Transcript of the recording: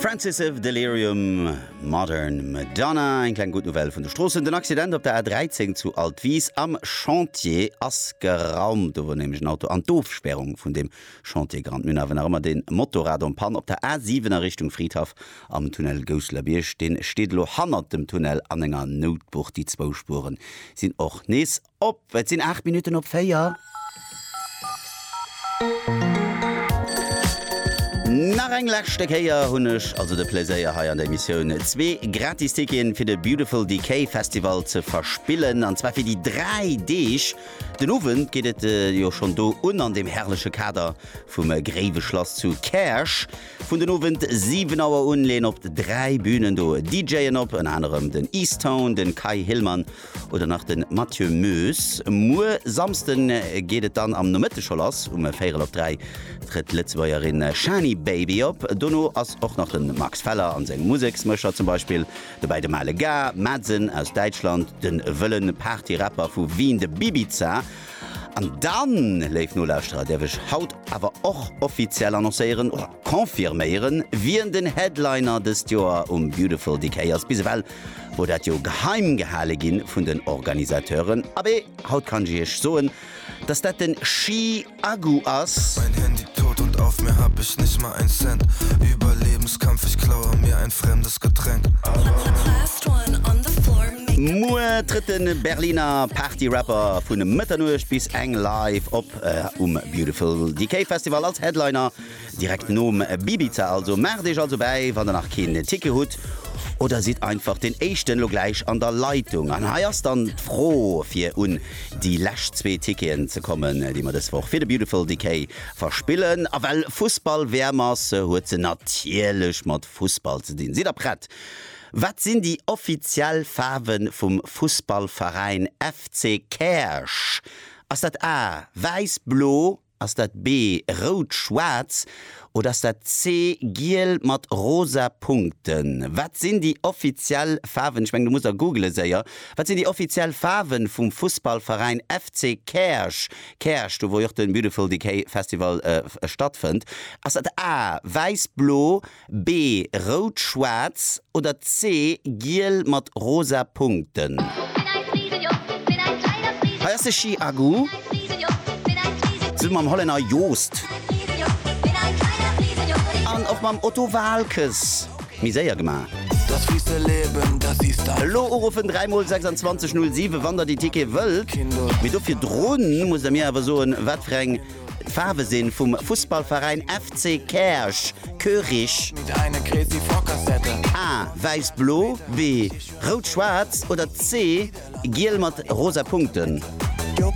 Francis of Delirium, Modern Madonna, eng kleng gutt Nouvelle vun de Stroossen. Den Accident op der A13 zu Altwis am Chantier ass geraumt. Do wor nämlech en Auto an d'Ofspärung vun deem Chantier gerannt. Mir hunn awer nach ëmmer dee Motorrad en panne op der A7 a Richtung Fridhaff am Tunnel Gousselerbiërg. Dee steet elo hannert dem Tunnel an enger Noutbucht. Déi zwou Spuere sinn och nees Op, et sinn 8 Minutten op 4. Nach eng leschte Kéier hunn ech also de Pleséier hei an der Emissioun zwee gratis Ticketen fir de Beautiful Decay Festival ze verspillen, an zwar fir déi 3 Deeg. Den Owend geet et jo schonn do un an deem herrleche Kader vum Gréiwe Schlass zu Käerch. Vun den Owend 7 Auer un leeën op 3 Bünen do DJen op, ënner anerem den Eastone, den Kai Hillmann oder nach den Mathieu Moes. Muer Samsden geet et dann am Nomëtte scho lass, um véirel op 3 trëtt d'Lëtzebuergerin Shani Baby op. Dono ass och nach den Max Feller an seng Museksmëscher, zum Beispill dobäi de Male Ga, Madsen aus Däitschland, den wëllen Party Rapper vu Wien, de Bibiza. An dann, léif Nolauschterer, däerf ech haut awer och offiziell annoncéieren, oder confirméieren, wien den Headliner dëst Joer um Beautiful Decay ass. Bis ewell wor dat jo geheim gehale gin vun den Organisateuren, abee haut kann ech iech soen dass dat den Chi Agu ass. Mein Handy tot und auf mir hab ich nicht mal ein Cent Überlebenskampf ich klaue mir ein fremdes Getränk. Muer trëtt de Berliner Party Rapper vun Mëtternuecht bis eng live op um Beautiful Decay Festival als Headliner. Direkt nom Bibiza also. Maacht Iech also bäi wann der nach keen Ticket hutt oder sidd einfach den éischten elo gläich an der Leitung. An hei ass dann d'Fro fir un déi lescht zwee Ticketen ze kommen déi mer dës Woch fir de Beautiful Decay verspillen. A well Fussball WM ass huet se natierlech mat Fussball ze dinn. Sidd der prett? Wat sinn déi offiziell Faarwe vum Fussballveräin FC Käerch? Ass dat A, Wäiss, Blo? Ass dat B rout, schwaarz oder ass dat C giel mat rosa Punkten? Wat sinn déi offiziell Faarwen, ech mengen du muss der googelen séier, wat sinn déi offiziell Faarwen vum Fussballveräin FC Käerch, Käerch, do wou jo och den Beautiful Decay Festival stattfënnt? Ass dat A wäiss, blo, B, Rout, schwaarz, oder C, giel mat rosa Punkten? Hei ass de Schi Agu zesummen mam Hollänner Joost an och mam Otto Waalkes méi séier gemaach. Elo uruffen 3 mol 26 07 wann der déi Tickete wëllt, mee dofir drun musst der mir awer soen wat fir eng D'Faarwe sinn vum Fussballveräin FC Käerch, Koerich. A, Wäiss-Blo, B, Rout-Schwaarz oder C, Giel mat rosa Punkten.